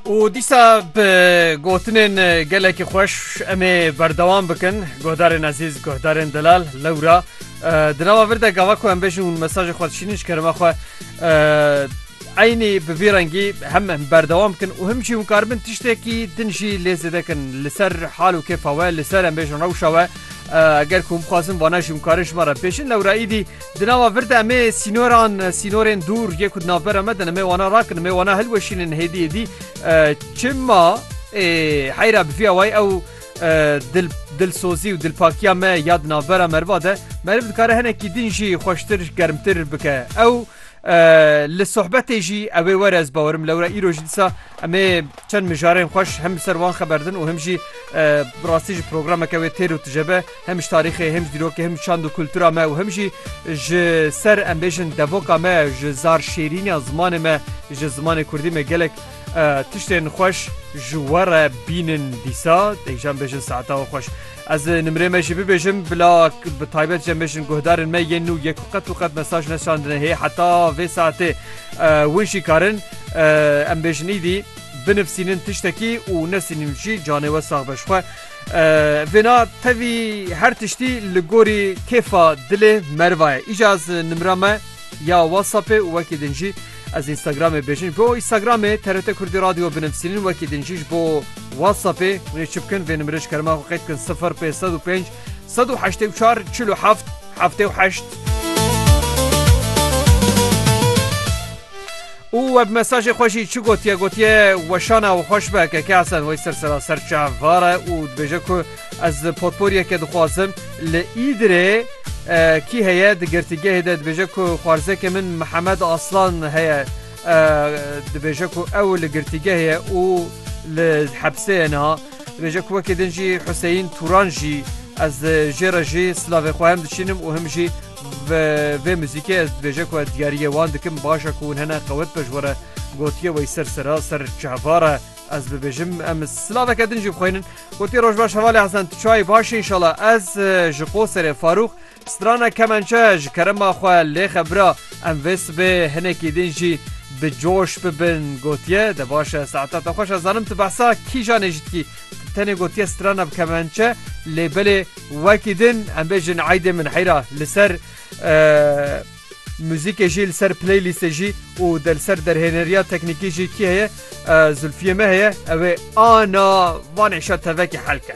û dîsa bi gotinên gelekî xweş em ê berdewam bikin guhdarên ezîz guhdarên delal lewra di nava vir de gava ku em bêjin û mesajê xwe dişînin ji kerema xwe eynî bi vî rengî hem em berdewam bikin û him jî hûn karibin tiştekî din jî lê zêdekin li ser hal û kêfa we li ser em bêjin rewşa we eger ku hûn bixwazin vana jî hûn karin ji me re bêjin lewra îdî Di nava vir de emê sînoran, sînorên dûr yê ku di navbera me din emê wana rakin, emê wana hilweşînin hêdî hêdî. Çima ê heyra bi vî awayî ew dil dilsozî û dilpakiya me ya di navbera meriva de meriv dikare hinekî din jî xweştir, germtir bike. Ew li sohbetê jî ewê were ez bawerim lewra îro jî disa emê çend mijarên xweş hem li ser wan xeber din û hem jî bi rastî jî programeke wê têr û tije be. Hem ji tarîxê hem ji dîrokê hem ji çand û kultura me û hem jî ji ser em bêjin devoka me ji zar şêrîniya zimanê me ji zimanê kurdî me gelek tiştên xweş ji we re bînin dîsa dek jî em bêjin saeta we xweş. Ez nimrê me jî bibêjim bila bi taybet jî em bêjin guhdarên me yên nû yek qet û qet mesaj neşandine hê heta vê saetê win jî karin em bêjin îdî binivîsînin tiştekî û nesînin jî canê we sax be ji xwe. Vêna tevî her tiştî li gorî kêfa dilê meriva ye. Îca ez nimra me ya WhatsAppê û wekî din jî ez Instagramê bêjin. Bo Instagramê TRT Kurdî Radyo binivîsînin wekî din jî ji bo WhatsAppê hûn ê çi bikin vê nimrê ji kerema xwe qeyd bikin 0505 184 47 78. Û we bi mesajê xwe jî çi gotiye gotiye weşan e û xweş be ke Kehsen Weyser seraser çavvar e û dibêje ku ez potporiyeke dixwazim li Îdirê kî heye di girtîgehê de dibêje ku xwarzeke min Mihemed Aslan heye dibêje ku ew li girtîgehê ye û li hepsê ye niha dibêje ku wekî din jî Huseyîn Turan jî ez jê re jî silavê xwe hem diçînim û him jî Ve vê muzîkê ez dibêje ku ez diyariyê wan dikim baş e ku hûn hene qewet be ji we re gotiye wey ser sera ser çehvar e ez bibêjim em silaveke din jî bixweynin gotiye roj baş hevalê hesen tu çayê başî inşala ez ji qo serê farûx strana kemençe ji kerema xwe lê xebira em vê sibê hinekî din jî bi coş bibin gotiye de baş e saeta te xweş ez zanim tu behsa kîjanê jî dikî Tenê gotiye strana bi kemençe lê belê wekî din em bêjin eydê min heyra li ser müzikê jî li ser playlistê jî û de li ser derhêneriya teknîkî jî kî heye Zulfiye me heye ew ê ana vanê şa tevekî helke.